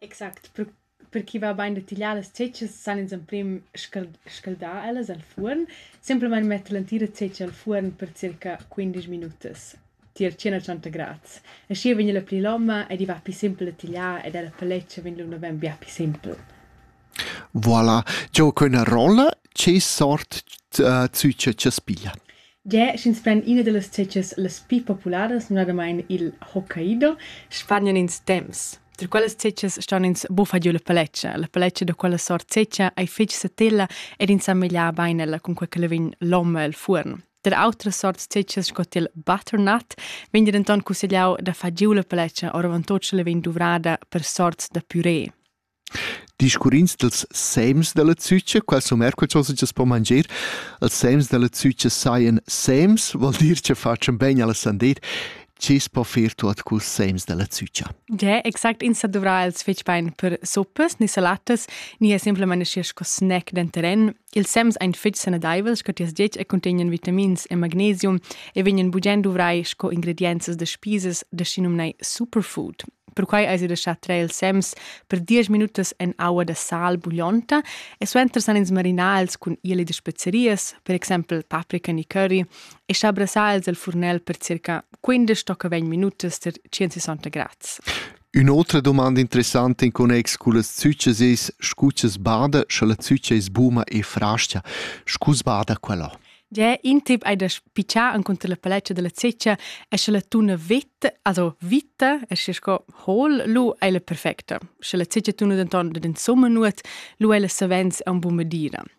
Exact. Per per ch'i va bain da tigliar las tschetschas san ins emprim scald scaldar ellas al fuorn, simplamain metter l'entira tschetscha al fuorn per circa quindesch minutas tier tschien a tschenta grads. Aschi vegn ella pli loma ed i va pli simpel a tigliar ed ella paletscha vegn lu naven bia pli simpel. Voilà, giò quella rolla, che sort uh, zücher cha's piglia? Gie, sch'ins pren ina dallas tgetgas las pli popularas, numnadamain il Hokkaido. Spagnan ins temps. Da quellas tgetgas ston ins buffar giu la paletscha. La paletscha da quella sort tgetga ei fetg satilla ed ins semegliar bein ella cun quei che la vegn l'om el fuorn. Tar autras sorts tgetgas sco il butternut vegn denton cussegliau da far giu la paletscha oravontut sche la vegn duvrada per sorts da puré. Discurrins dals sems da la zücha, qual sun eir que chosa chi's po manger? Els sems da la zücha sajan sems, vuol dir cha fatschan bain alla sandet. Chi's po fer tuot culs sems da la zücha? Yeah, exact. Ins dovrà els fetg bain per suppas, ni salatas, ni è semplamain schi sco snack denteren. Ils sems ein fetg sanadeivels che tias dieta e contegnan vitamins e magnesium e vegnan bugen duvrai sco ingredienzas da spisas da schinumnai superfood. Perquai eis ei da schar traer ils sems per diesch minutas en aua da sal buglionta e suenter san ins marinar els cun ieli da spezerias, per exempel paprika ni curry, e schar brassar els al furnel per circa 15 tocca 20 minutas per 160 grads. Ün'otra dumanda interessanta in connex cullas züchas es, scu cha's bada, scha la zücha es buna e frascha. Scu sbada quella? Già in tip hai da spichar encunter la paletta da la zecca e scha la tuna vetta, also vita, e scha sco hol, lu ei la perfecta. Scha la zecca tuna denton dad insomma nuot, lu ei la savens ein buca medira.